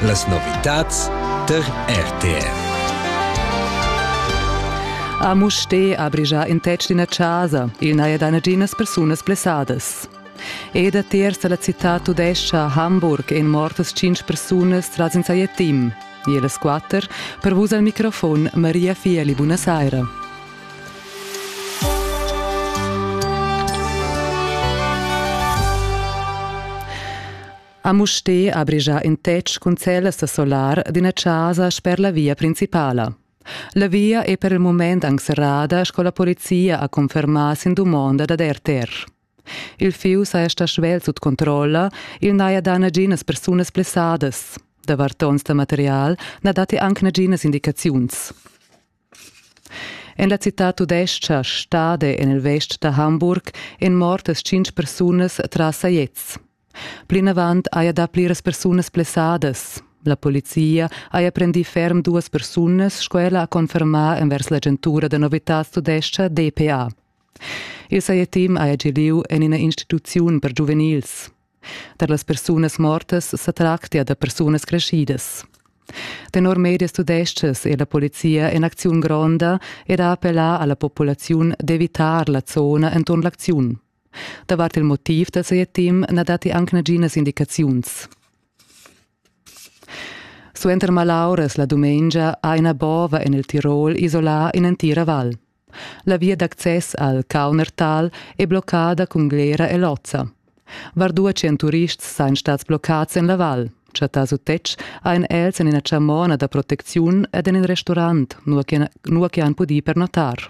Las novitads tar RTV. A Musté ha brigià in tetg d'ina chasa. Il n'haja da naginas persunas blessadas. E da terz da la citad tudescha Hamburg ein mortas cinc persunas tras in sajettim. Ier las quatter, per vus al microfon Maria Fieli, buona saira. A Mustér ha brigia ün tetg cun cellas da solar d'üna chasa sper la via principala. La via è per il moment anc serrada sco la polizia ha confermà sin dumonda dad RTR. Il fius ha esta svelt sut controlla, il n'haja dà naginas persunas blessadas. Da vartons da material na datti anc naginas indicaziuns. En la citad tudestga Stade en il vest da Hamburg èn mortas tschintg persunas tras sajets. Plinavant haja dà pliras persunas blessadas. La polizia haja prendì ferm duas persunas, sco ella ha confermà envers l'agentura da novitads tudestga DPA. Il sajetim haja gì lieu en ina instituziun per giuvenils. Tar las persunas mortas sa tractia da persunas creschidas. Tenor medias tudestgas è la polizia en acziun gronda ed ha appellà a la populaziun d'evitar la zona enturn l'acziun. Davart il motiv da ses team na datti anc naginas indicaziuns. Suenter malauras la dumengia ha ina bova en il Tirol isolà in'entira val. La via d'access al Kaunertal è bloccada cun glera e lozza. Var due cent turists sain stats bloccats en la val. Chattà sut tetg ein els en ina chamona da protecziun ed en in restaurant, nua che, nua che han pudì pernotar.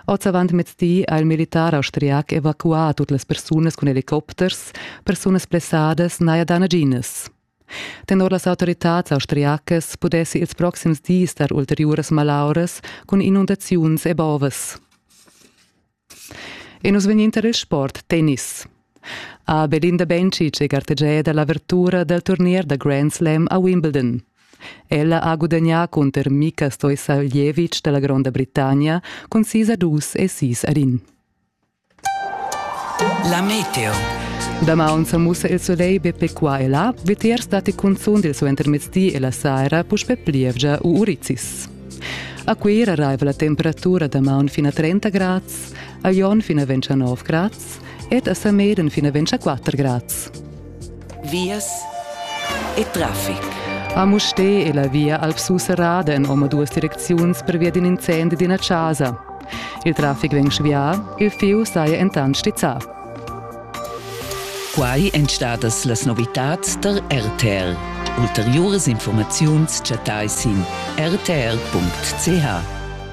Oz avant mezdi ha il militar austriac evacuà tut las persunas cun helicopters, persunas blessadas naja da naginas. Tenor las autoritads austriacas pudessi ils proxims dis dar ulteriuras malauras cun inundaziuns e bovas. E nus vegninta il sport tennis. A Belinda Bencic è gartegiada l'avertura dal turnier da Grand Slam a Wimbledon. Ella ha gudagnà cunter Mika Stoisaljevic dalla Gronda Britannia cun sis a dus e sis ad in. La meteo. Damaun sa mussa il solegl be pe qua e là, vitiers datti cunzunt il suo intermezdi e la saira puspè plievgia u urizis. A Cuira arriva la temperatura damaun fino a 30 grads, a Jon fino a 29 grads ed a Sameden fino a 24 grads. Vias e traffic. A Mustè è la via Alp Susserrada en omaduas direcziuns pervia d'in incendi d'ina chasa. Il traffic vegn svià, il fieu saja entant stizzà. Quai èn stadas las novitads tar RTL. Ulteriuras informaziuns chattai sin rtl.ch.